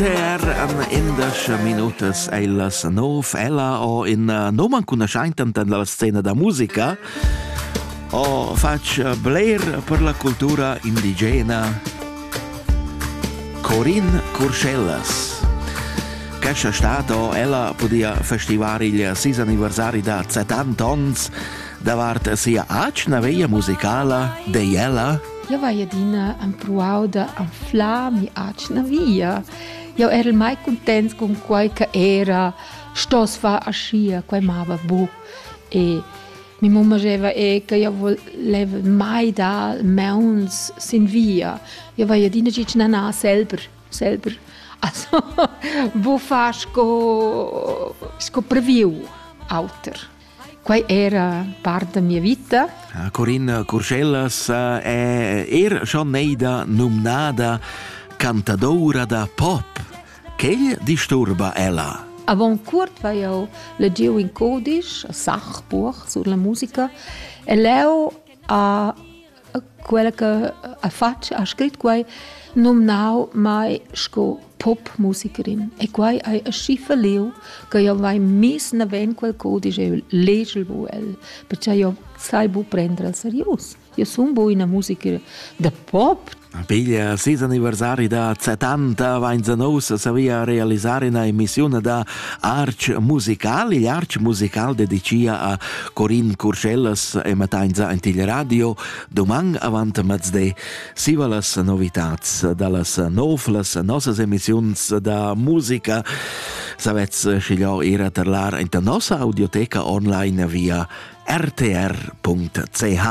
Per um, indesch minutas è la nov ella o in uh, noman cun aschaintant dalla scena da musica o fac bler per la cultura indigena Corin Curschellas. Cascia stato ella podia festivar il sis anniversari da 70 ans davart sia acna veia musicala de ella Jau hai adina empruau da anflar mi'atgna via. Jau erel mai cuntents cun quai che era stoss far aschia, quai mava buc. E mia mumma scheva e che jau voleva mai dar mauns sin via. Jau hai adina gitg nanà selber, selber. Also, buc far sco, sco previu auter. Quai era part da mia vita. Corinna Curschellas è er schon neida numnada cantadoura da pop. Quai disturba ella. Avant curt vai jau legieu in codisch a Sachburg sur la musica e leu a quella che ha fatg, ha scrit quai, numnau mai sco popmusikerin. E quai è aschi feliu che io vai mis naven quel codice e legel bu el, perché io sai bu prendere al serius. Io sono bu una musiker de pop. Piglia ses anniversari da 70 vain nousa savia realisar ina emissione da Arch musical, igl arch musical dedicia a Corin Curschellas e Matainza en til radio doman avant mezde siva las novitats dallas nov, las nossas emissiuns da musica. Savez, schiglio era terlar in nossa audioteca online via rtr.ch.